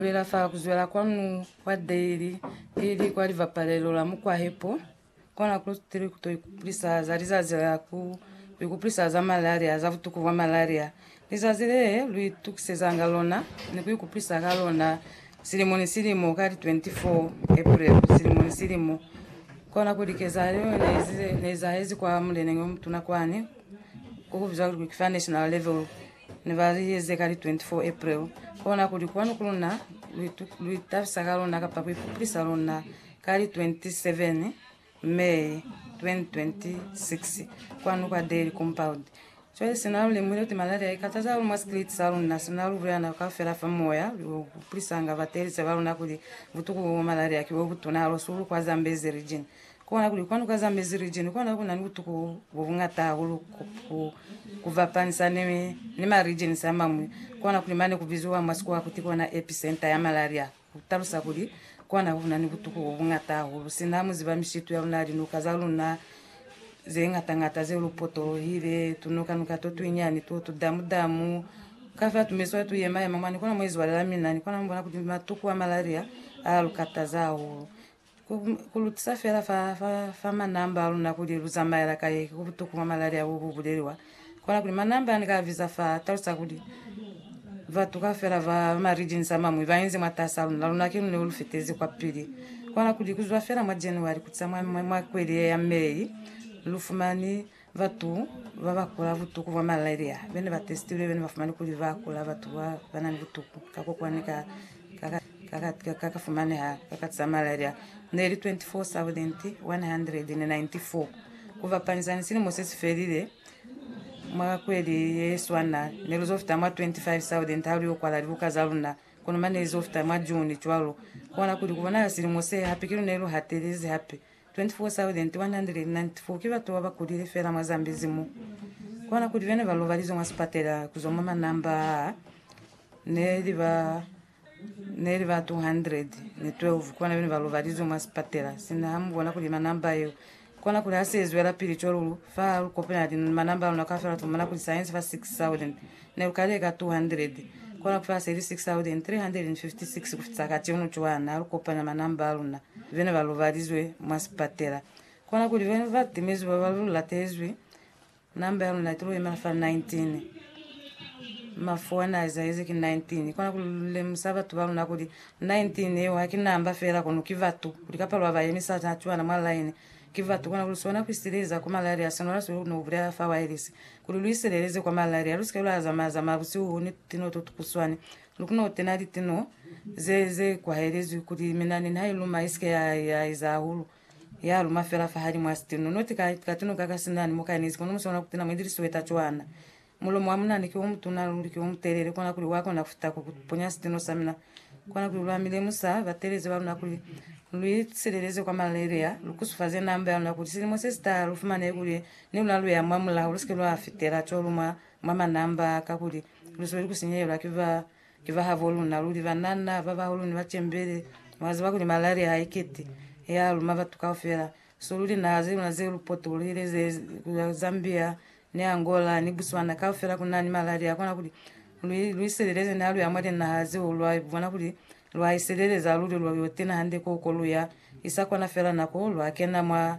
Bulela fa kuzwela kwanu kwa daily ili kwa libapalelo la mukwahepo, kona ku tiri kuto ikupulisa za lizazi la ku ikupulisa za malaria, za butuku bwa malaria, lizazi le lu itukisezanga lona ni ku ikupulisa ka lona silimo ni silimo ka li 24 April silimo ni silimo. Kona kuli kezahalo yeo ne ezahezi kwa muleneñi omutuna kwani, o kubizwa kuli ki fa national level. Ne ba li eze ka li 24 April, kona kuli kwanu ku luna lu itabisa ka lona kapa ku ikupulisa lona ka li 27 May 2026 kwanu kwa Daly Compound. Cwale sina lu lemuhile kuti malaria i kataza hahulu mwa sikiliti sa luna, sina lu bulela nabo kaufela fa moya, lu yo kupulisanga batelezi ba luna kuli butuku bo bwa malaria ki bo butuna hahulu hahulu kwa Zambezi Region. Ku bona kuli kwanu kwa za mezi region kona ku na ni butuku bo bungata hahulu ku bapanisa ni ma regions a mañwi. Ku bona kuli mane ku biziwa mwa sikuwa kuti kona epicenter ya malaria. Ku talusa kuli, kona ku na ni butuku bo bungata hahulu sina mu ziba mishitu ya luna, linuka za luna ze ngata ngata zeo lu potolohile, tunuka nuka to tuinyani to, tu damu damu, ka fa tu mezi wa tu yema yema mwa ni kona mwa izwalela. Mina ni kona ku bona kuti matuku a malaria a lu kataza hahulu. Ku, ku lutisa fela fa, fa, fa manamba a luna kuli lu zamaela kai, ku butuku mwa malali a bu, bu buleliwa. Kona kuli manamba a ni ka a biza fa, a talusa kuli batu kaufela ba, ba ma regions a mañwi ba inzi mwatasi a luna, luna ki lune lu fitezi kwapili. Kona kuli ku zwa fela mwa January ku tisa mwa, mwa, mwa kweli ye ya May, lu fumani Batu ba ba kula butuku bwa malaria be ne ba testilwe be ne ba fumani kuli ba kula batu ba ba na ni butuku ka kokwani ka ka ka fumaneha ka kati sa malaria ne li 24,194. Ku bapanyisa ni silimo se si felile, mwa kweli ye swana ne lu zo fita mwa 25,000 ha lu yo kwala libuka za luna, kono mane li zo fita mwa June cwalo. Ku kona kuli ku bonahala silimo se hape kilu ne lu hatelezi hape 24,194 ki batu babakulile feela mwa Zambezi mo. Kona kuli bene ba lobalizwe mwa sipatela kuzwa mwa manamba aa neli ba neli ba 212 kona bene ba lobalizwe mwa sipatela. Sina ha mubona kuli manamba yeo kona kuli hasi ezwelapili cwalo lu fa lu kopanya linoni manamba alona kaufela tumona kuli saensi fa 6,000 Ne lu kali eka 200, kona kufela se li 6,356 ku fitisa kati yono cwaa na lu kopanya manamba a luna bena ba lobalizwe mwa sipatela. Kona kuli bena ba timezwi baba lu latezwi, namba ya luna itilo yemela fa 19. Mafu ana a ezahezi ki 19. Kona kuli lu lemusa batu ba luna kuli 19 yeo haki namba fela kono ki batu, kuli ka palo ya ba yemisa cwana mwa line ki batu. Kona kuli sona ku isileeza ku malaria, sinola so ne ku bulela fa waelesi Kuli lu isileleze kwa malaria, lu si ke lwa zamaya zamaya busihu ni tino to tukuswani. Lu kona ku tena litino ze, ze kwahelezwi kuli minani niha i luma i si ke ya, ya eza hahulu, ya luma fela fahalimu a sitino. Noti ka, ka tino ka ka sinani mo ka inezi, kono mu si kona ku tena mo ili lisweta cwana. Mulomo wa munani ki o mutuna luli, ki o mutelele, kona kuli wa kona ku fita ku, ku ponya sitino sa mina. Kona kuli lwa mi lemusa batelezi ba luna kuli, Lu isileleze kwa malaria, lu kusufaze namba ya luna kuli silimo se si taha lu fumanehe kuli Ni luna luya mwa mulaho, lusike lwa fitela cwalo mwa, mwa manamba a ka, kuli luzweli ku sinyehela ki ba, ki ba habo luna. Luli banana babahulu ni bacembele, mwa ziba kuli malaria ha ikiti, ya luma batu kaufela. So luli naha ze luna ze lu potolwile, ze, ku ya Zambia, ni Angola, ni Botswana, kaufela ku na ni malaria. Hakuna kuli lu, lu iseleleze ni ha luya mwa linaha zeo lwa bona kuli Lwa isileleza luli lwa yo tina hande ko ko lu ya, isa kona fela nako lwa kena mwa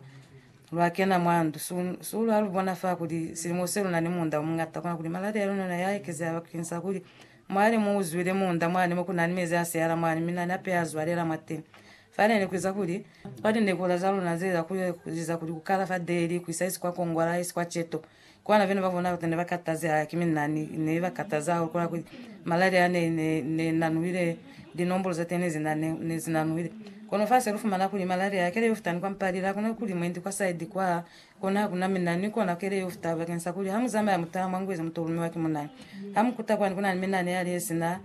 lwa kena mwa ndu. Su, su lwa lu bona fa kuli silimo se luna ni muunda o muñata, kona kuli maladi a luna na ya ekezeha bakeng sa kuli mwali mu uzwile muunda mwani mo kuna ni mezi a siyala mwani mi na ni apeha a zwalela mwateni. Fa ne ni kuiza kuli. Kwa linekula za luna ze za ku, li za kuli ku kala fa Delhi, ku isa isi kwa Congo la isi kwa Cheto, Kwana vene ba bona kuli ne ba kataze hahulu ki minani. Ne ba kataza hahulu kwana kuli malaria a ne, ne, ne nanuhile, linombolo za teni ze na, ne zi nanuhile. Kono fa se lu fumana kuli malaria ha kele yo fita ni kwa Mpalile, ha kuna kuli mwendi kwa side kwa, kona ha kuna minani kona ha kele yo fita bakeng sa kuli ha mu zamaya mu taha mwa ngweza mu to lumiwa ki munani. Ha mu kuta kwani kuna ni minani yali ye sina,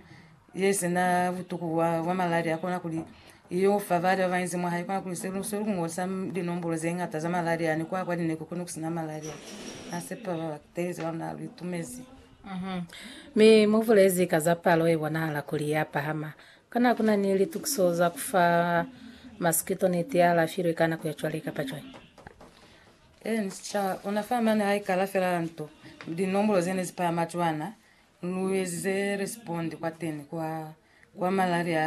ye sina butuku bwa, bwa malaria kona kuli Yeo fa bali babañi mwa hae kwa Kreste, lu se lu ñola sa linombulo ze ñata za malaria, ni kwa kwa ni ne ku koni ku sina malaria. Na sepa ba ba teezi ba luna lu itumezi. Mi mu bulezi ka za palo ye bonahala kuli ya pahama. Kana ku na ni litukiso za ku fa masikito niti ya alafilwe ka nako ya cwale kapa cwale? Ee, ni sica ona fa mane ha i kala fela nto, linombulo ze ne zi pahama cwana, lu ezize Respond kwateni kwa, kwa malaria a